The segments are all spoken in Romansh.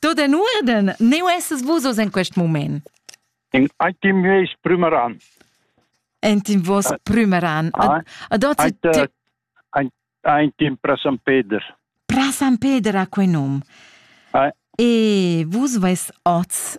Tut en urden, neu esses vus oz en quest moment. In item heis prümeran. Entin vos prümeran. Ad ot ein tim pra San Peder. Pra San Peder ha quei num. E vus veis oz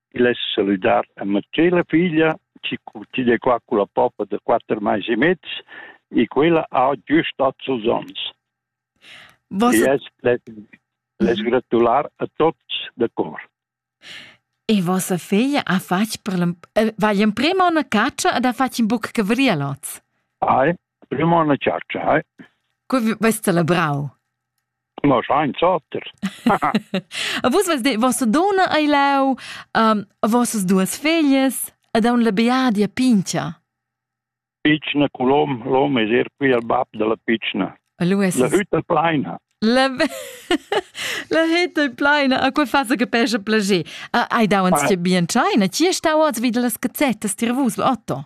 Il es salüdar a ma tschella figlia chi curtide qua culla poppa da quatter mais e mezs e quella ha güst ot sos ons. Vos... E es les gratular a tots da cor. E vossa figlia ha fatg per eh, va in prima una caccia ed ha fatg in buc cavrialots. Ai, prima una caccia, ai. Cu veste la brau? Ma schein zatter. A vus vas de vossa donna ei lau, um, a vossas duas feglias ed aun la beadia pincha. Pichna colom, l'hom es er qui al bab della pichna. Lu es La hütta pleina. La La hütta pleina, a quei fasa che pesce plager. Ah, Ai dauens che bien scheina, ci stau oz vid las cazzettas tir vus, Otto.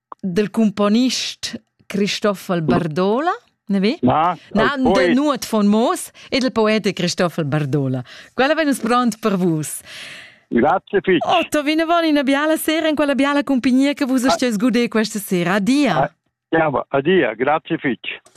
dal cumponist Christoffel Bardola, ne vi? Na, na del Nuot von Moos e del poete Christoffel Bardola. Quella vegn pronto per vus. Grazie Fitch. Otto, vi ne voli una biala sera in quella biala compagnia che vus stiate gudere questa sera. Adia. Ah, ja, adia, grazie Fitch.